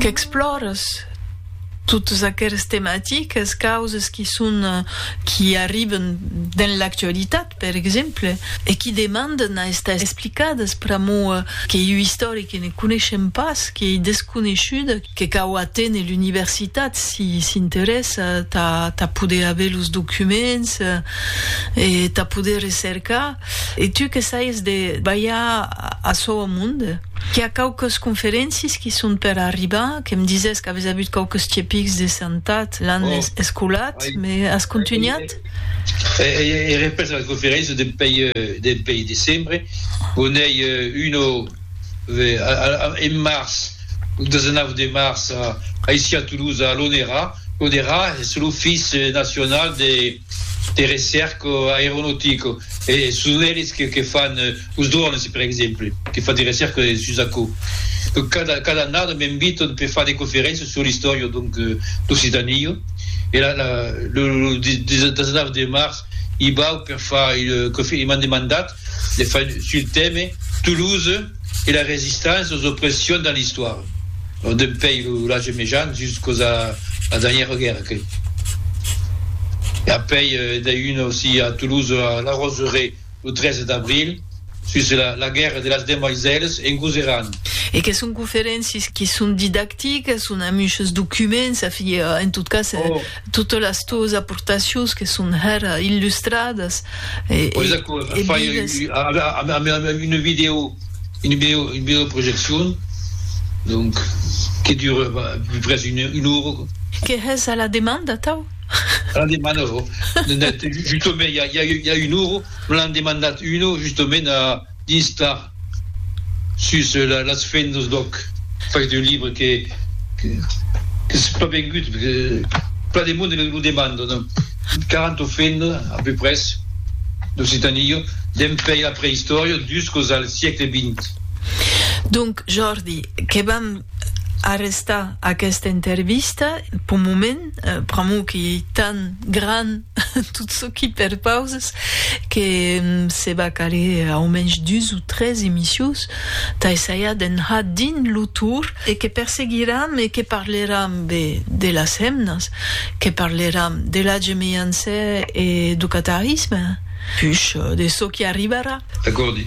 Qu'explòres totes aqueres tematiques, causes qui son, qui arriben dens l'actualitat, per exemple, e qui demanden a estar explicades pr'amor qu'ei ua istòria que ne coneishem pas, qu'ei desconeishuda, que cau aténer l'universitat si s'interessa tà poder aver los documents e tà poder recercar. E tu que saies de balhar açò au monde? Qu'i a quauques conferéncies qui son per arribar, que me disés qu'aves avut quauques tiepics de santat l'an escolat, me as contunhat? Ei repés la conferéncia dempèi decembre, o n'ei una en març, lo 19 de març, aicí a Toulouse, a l'ONERA, l'ONERA es lo fils nacional de. de recerca aeronautica e son eles que que fan los drones per exemple que fan de recerca sus aquò donc cada cada annada m'invitan per far de conferéncias sur l'istòria donc d'Occitania e la la lo 19 de març i bau per far e m'an demandat de fai sul teme Toulouse e la resistance aux oppressions dans l'histoire, lo dempei lo l'age mejan juscos a la dernière guerre que e apei de un aussi a Toulouse a la Roseraie lo 13 d'abril sus la la guerre de las demoiselles en Gouzeran. E que son conferéncies qui son didactiques, son amuchos documents, enfin, en tot cas, Totes las tòus aportacions que son hèra illustradas e vives. Una vidèo, una vidèo projeccion, donc que dura près una ora. Que hès a la demanda atau? A la demanda, justament, i a una ora, me l'an demandat una, justament, a. d'istar sus las fendas d'òc fach d'un libre que qu'es pas vengut, perque plan de monde lo demanda, non? 40 fendas a peu pres d'Occitania, dempèi la preïstòria juscos al siecle vint. Donc, Jordi, que vam arrestar aquesta intervista, p'un moment, pr'amor que ei tan gran, Tot çò qu'i perpauses que se va caler au mensh dus o tres emissius tà essaiar d'enhar dins lo tour e que perseguiram e que parleram be de las hemnas, que parleram de la gemeyança e do catarisme, push de çò qu'i arribarà. Acòrdi.